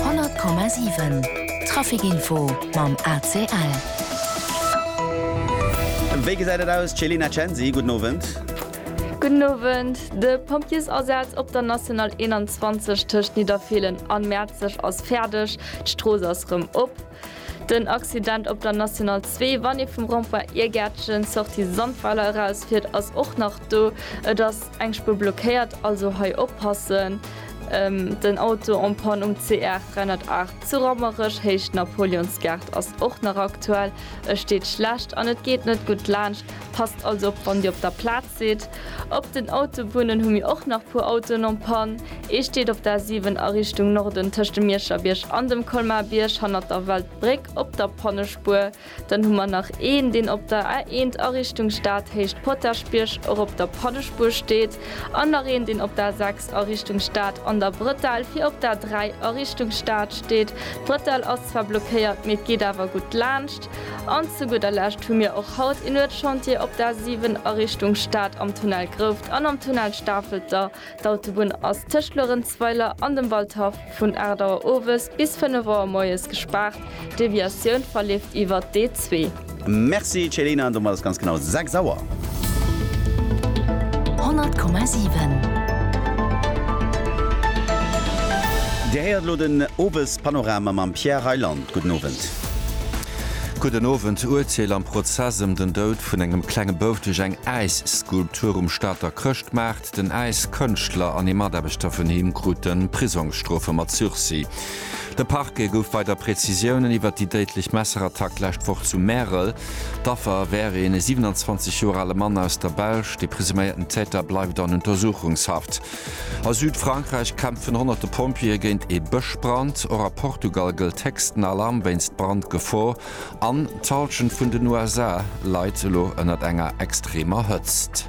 Honnert Komma siwen, Trafikinfo mam ACL. Wéi gesäit et aus, Celina Censi, gudden Owend. Gudden Owend, De Pompjeesasaz op der National 21 tëscht Nidderfeelen an Mäerzeg ass fäerdeg, d'Strooss ass rëm op. Den Accident op der National 2, wann ee vum Rond-point Irgäertchen, Sortie Sandweiler, eraus fiert, ass och nach do. Et ass eng Spuer blockéiert, also hei oppassen. Den Auto en panne um CR 308 zu Rammerech, Héicht Napoleonsgaart, ass och nach aktuell. E steet schlecht an et geet net gutt laanscht. Passt also op, wann Dir op der Plaz. Seet, Op den Autobunnen hu mir och nach puer Autoen en panne. Ee steet op der A7 a Richtung Norden tëscht dem Mierscherbierg an dem Colmarbierg hannert der Weltbréck op der Pannespuer. Dann hu mer nach een, deen op der A1 a Richtung Stad héicht Potaschbierg och op der Pannespuer steet an nach een, deen op der A6 a Richtung Stad an der Brëttel fir op der A3 a Richtung Stad steet. D'Brëttel ass zwar blockéiert, mee et geet awer gutt laanscht. An zu gudder Lescht hu mir och haut een Uertschantier op der A 7 a Richtung Stad am Tunnel Grouft an am Tunnel Stafelter. D'Autobunn ass tëscht Luerenzweiler an dem Waldhaff vun 8 Auer owes bis 5 Auer moies gespaart. D'Deviatioun verleeft iwwert d'E2. Merci Céline, domat ass ganz genau 6 Auer. 100,7. Dir héiert elo den Owespanorama mam Pierre Reyland. Gudden Owend. Gudden Owend. D'Urteel am Prozess ëm den Doud vun engem klenge Bouf duerch eng Äisskulptur um Stater Chrëschtmaart. Den Äiskënschtler an ee Mataarbechter vun him krute Prisongsstrofe mat Sursis. De Parquet gouf weider Prezisiounen iwwert déi déidlech Messerattack d'lescht Woch zu Märel. D'Affer wär een e 27 Joer ale Mann aus der Belsch. De presuméierten Täter bleift an Untersuchungshaft. A Südfrankräich kämpfen honnerte Pompjeeë géint ee Bëschbrand. Och a Portugal gëllt héchsten Alarm wéinst Brandgefor. An d'Hallschent vun den USA leit elo ënnert enger extremer Hëtzt.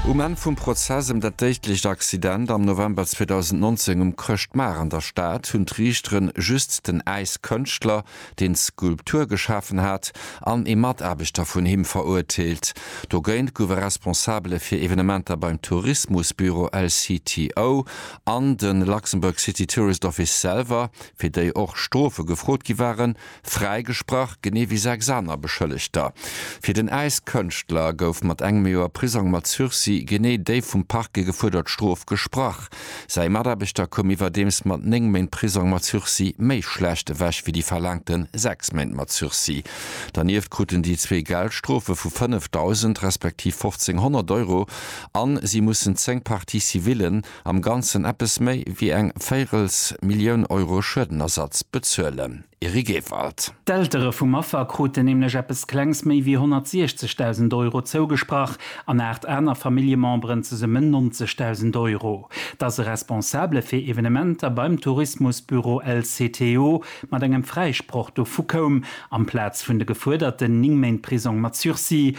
Um Enn vum Prozess ëm dat déidlecht Accident am November 2019 um Chrëschtmaart an der Stad hunn d'Riichteren just den Äiskënschtler, deen d'Skulptur geschafen hat, an ee Mataarbechter vun him verurteelt. Dogéint gouf e Responsabele fir Evenementer beim Tourismusbüro LCTO an de Luxembourg City Tourist Office selwer, fir déi och Strofe gefrot gi waren, fräigesprach, genee wéi sechs aner Beschëllegter. Fir den Äiskënschtler gouf mat engem Joer Prisong mat Sursis genee déi vum Parquet gefuerdert Strof gesprach. Säi Mataarbechter koum iwwerdeems mat néng Méint Prisong mat Sursis méi schlecht ewech wéi déi verlaangte sechs Méint mat Sursis. Dernieft kruten déi zwee Geldstrofe vu 5.000 respektiv 1.500 Euro a si mussen zéng Parties civillen, am Ganzen eppes méi wéi eng Véirelsmillioun Euro Schuedenersatz bezuelen. Eric Ewald. D'Eltere vum Affer kruten nämlech eppes Klengs méi wéi 160.000 Euro zougesprach an aacht aner Familljememberen zesummen 90.000 Euro. Dass e Responsabele fir Evenementer beim Tourismusbüro LCTO mat engem Fräisproch dovu koum, amplaz vun de gefuerderten 9 Méint Prisong mat Sursis,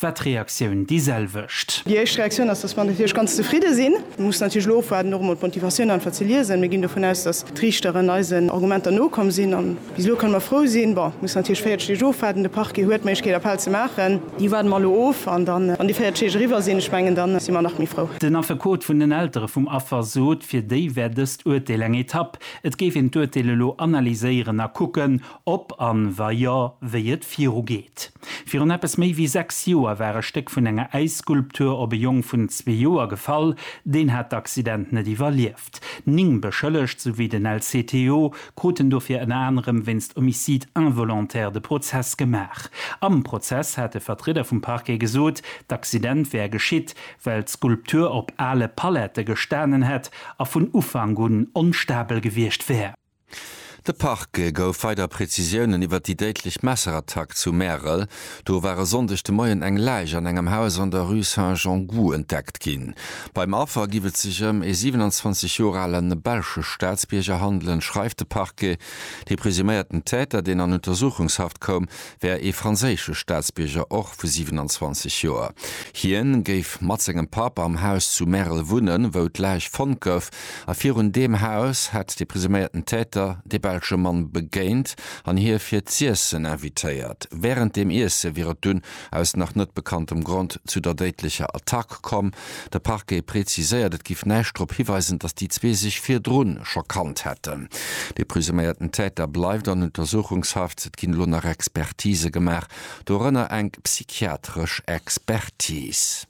war d'Reaktioun déi selwecht. Déi éischt Reaktioun ass, dass mer natierlech ganz zefridde sinn. Mir mussen natierlech elo ofwaarden, och emol d'Motivatioun einfach ze liesen. Mir ginn dovun aus, dass d'Riichteren eisen Argumenter nokomm sinn. A bis elo kënne mer frou sinn. Bon, mir mussen natierlech 40 Deeg ofwaarden. De Parquet huet d'Méiglechkeet, Appell ze maachen. Déi waarde mer elo of. An dann, wann déi 40 Deeg eriwwer sinn, ech mengen, da si mer nach méi frou. Den Affekot vun den Eltere vum Affer sot, fir déi wär dëst Urteel eng Etapp. Et géif een d'Urteel elo analyséieren a kucken, Ob an wa jo, wéi et viru geet. Virun eppes méi wéi 6 Joer war e Stéck vun enger Äisskulptur op e Jong vun zwee Joer gefall. Deen hat d'Accident net iwwerlieft. Ning Beschëllegt, souwéi den LCTO, kruten dofir ënner anerem wéinst Homicide involontaire de Prozess gemaach. Am Prozess hat e Vertrieder vum Parquet gesot, d'Accident wär geschitt, well d'Skulptur op ale Palette gestanen hätt a vun Ufank un onstabel gewiescht wär. De Parquet gouf weider Prezisiounen iwwer déi déidlech Messerattack zu Märel. Do war e Sonndeg de Moien eng Läich an engem Haus an der Rue Saint-Jean-Gou entdeckt ginn. Beim Affer giff et sech ëm ee 27 Joer ale belsche Staatsbierger handelen, schreift de Parquet. De presuméierten Täter, deen an Untersuchungshaft koum, wär ee franséische Staatsbierger och vu 27 Joer. Hien géif mat sengem Papp am Haus zu Märel wunnen, wou d'Läich fonnt gouf. A virun deem Haus hätt de presuméierten Täter de belsche Mann begéint an hie fir z'iessen invitéiert. Wärend dem Iesse wier et dunn aus nach net bekanntem Grond zu der déidlecher Attack komm. De Parquet preziséiert, et géif näischt drop hiweisen, datt déi zwee sech virdru scho kannt hätten. De presuméierten Täter bleift an Untersuchungshaft. Et ginn elo nach Expertise gemaach, dorënner eng psychiatresch Expertis.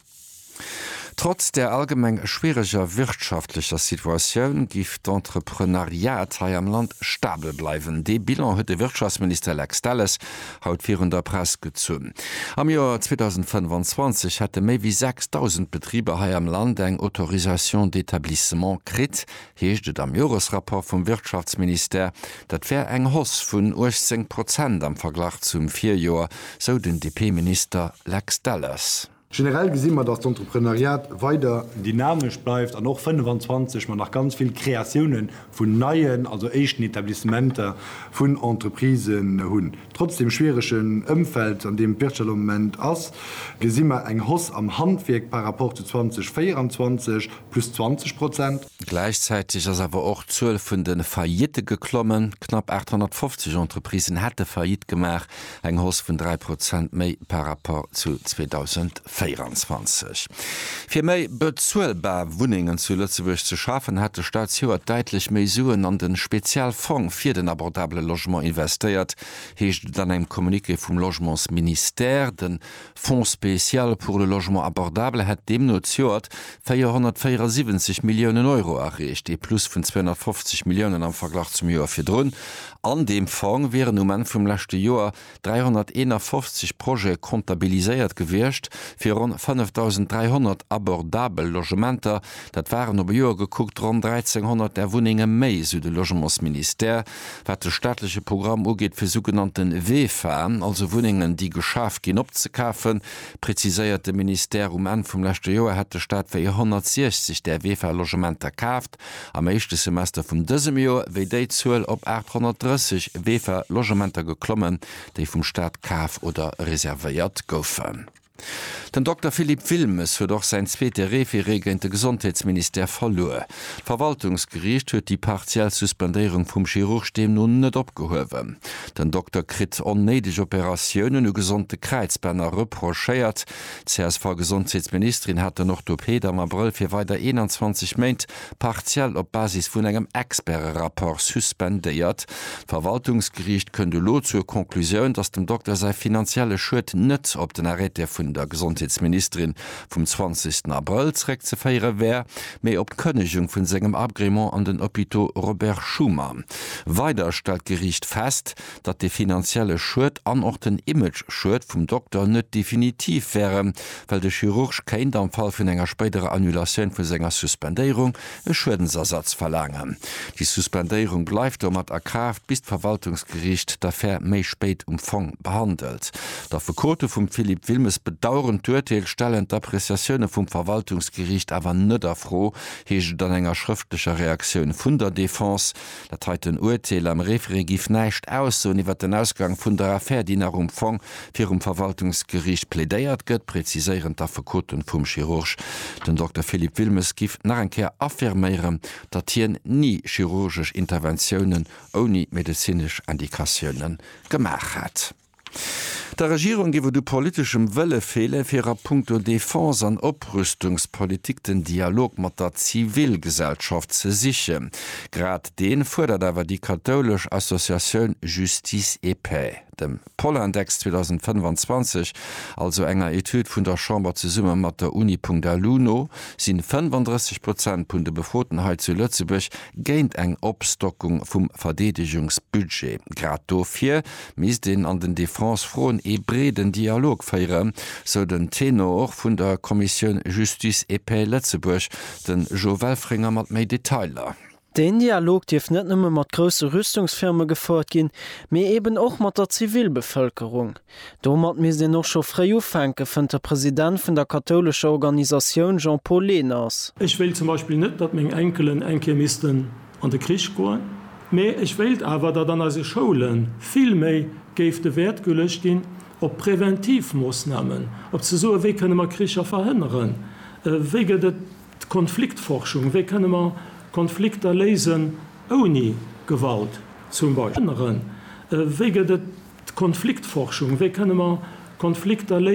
Trotz der allgemeng schwiereger wirtschaftlecher Situatioun géif d'Entrepreneuriat hei am Land stabel bleiwen. Dee Bilan huet de Wirtschaftsminister Lex Delles haut virun der Press gezunn. Am Joer 2025 hätte méi wéi 6.000 Betriber hei am Land eng Autorisation d'établissement kritt, heescht et am Joresrapport vum Wirtschaftsministère. Dat wär eng Hausse vun 18 Prozent am Verglach zum Virjoer, sou den DP-Minister Lex Delles. Generell gesi mer, datt d'Entrepreneuriat weider. Dynamesch bleift an och 25 mer nach ganz vill Kreatioune vun neien, also éischten Etablissementer vun Entreprisen hunn. Trotz dem schwieregen Ëmfeld, an deem d'Wirtschaft am Moment ass, gesi mer eng Hausse am Handwierk par rapport zu 2024, plus 20 Prozent. Gläichzäiteg ass awer och d'Zuel vun de Faillitte geklommen. Knapp 850 Entreprisen hätte Faillite gemaach. eng Hoss vun 3 Prozent méi par rapport zu 2024. Fir méi bezuelbar Wunnengen zu Lëtzebuerg ze schafen, hat de Staat zejoert däitlech méi Suen an den Spezialfong fir den abordabele Logement investéiert, heescht et an engem Communiqué vum Logementsministère. Den Fonds spécial pour le logement abordable hätt deemno zejoert 474 Milliounen Euro areecht, ee Plus vun 250 Milliounen am Verglach zum Joer virdrun. An deem Fong wieren um Enn vum leschte Joer 351 Projete comptabiliséiert gewiescht, fir ronn 5.300 abordabel Logementer. Dat waren op e Joer gekuckt ronn 1.300 där Wunnenge méi, sou de Logementsministère. Wat de staatleche Programm ugeet fir sougenannte VEFA, also Wunnengen déi geschaf ginn, opzekafen, preziséiert de Ministère, um Enn vum leschte Joer hätt de Staat wéi 160 där VEFA-Logementer kaaft, am éischte Semester vum dësem Joer wéi déi Zuel op 830 VEFA-Logementer geklommen, déi vum Staat kaf oder reservéiert goufen. Den Dokter Philippe Wilmes huet och säin zweete Referé géint de Gesondheetsministère verluer. D'Verwaltungsgeriicht huet déi partiell Suspendéierung vum Chirurg deemno net opgehuewen. Den Dokter kritt onnéideg Operatiounen u gesonde Kräizbänner reprochéiert. D'CSV-Gesondheetsministerin hat den Orthopeed am Abrëll fir weider 21 Méint partiell op Basis vun engem Experte-Rapport suspendéiert. D'Verwaltungsgeriicht kënnt elo zur Conclusioun, datt dem Dokter säi finanzielle Schued net op den Arrêté vun der Gesondheetsministerin vum 20. Abrëll zréckzeféiere wär, mee op d'Kënnegung vun sengem Agrément an den Hôpitaux Robert Schuman. Weider stellt d'Geriicht fest, datt de finanzielle Schued an och den Image-Schued vum Dokter net definitiv wären, well de Chirurg kéint, am Fall vun enger spéiderer Annulatioun vu senger Suspendéierung, e Schuedensersatz verlaangen. Déi Suspendéierung bleift domat a Kraaft, bis d'Verwaltungsgeriicht d'Affär méi spéit um Fong behandelt. D'Affekote vum Philippe Wilmes bedaueren d'Urteel, stellen d'Appreciatioune vum Verwaltungsgeriicht awer net a Fro, heescht et an enger schrëftlecher Reaktioun vun der Defense. Dat heiten Uerteel am Référé giff näischt aussoen iwwer den Ausgang vun der Affär, déi nach um Fong virum Verwaltungsgeriicht plädéiert gëtt, präziséieren d'Affekoten vum Chirurg. Den Dokter Philippe Wilmes giff nach eng Kéier affirméieren, datt hien ni chirurgesch Interventiounen ouni medezinesch Indikatioune gemaach hätt. Der Regierung géif et u politeschem Wëlle feelen, fir a punkto Defense an Oprüstungspolitik den Dialog mat der Zivilgesellschaft ze sichen. Grad dee fuerdert awer déi kathoulesch Associatioun Justice et Paix. Dem Polindex 2025, also enger Etüd vun der Chamber zesumme mat der Uni.lu no, si 35 Prozent vun de Befroten hei zu Lëtzebuerg géint eng Opstockung vum Verdeedegungsbudget. Grad dofir misst een an den Defense-Froen ee breeden Dialog féieren, sou den Tenor vun der Commissioun Justice et Paix Lëtzebuerg, de Jo Welfringer mat méi Detailer. Deen Dialog dierft net nëmme mat grousse Rüstungsfirme gefouert ginn, mee eben och mat der Zivilbevëlkerung. Domat misst een och scho fréi ufänken, fënnt de President vun der kathoulescher Organisatioun Jean-Paul Lehners. Ech wéilt zum Beispill net, datt meng Enkelen eng Kéier missten an de Krich goen, mä ech wéilt awer, datt an eise Schoule vill méi géif de Wäert geluecht ginn op präventiv Moossnamen, op ze soen, wéi kënne mer Kricher verhënneren, wéi gëtt et Konfliktforschung, wéi kënne mer Konflikter léisen ouni Gewalt zum Beispill, wéi gëtt et Konfliktforschung, wéi kënne mer Konflikter léisen.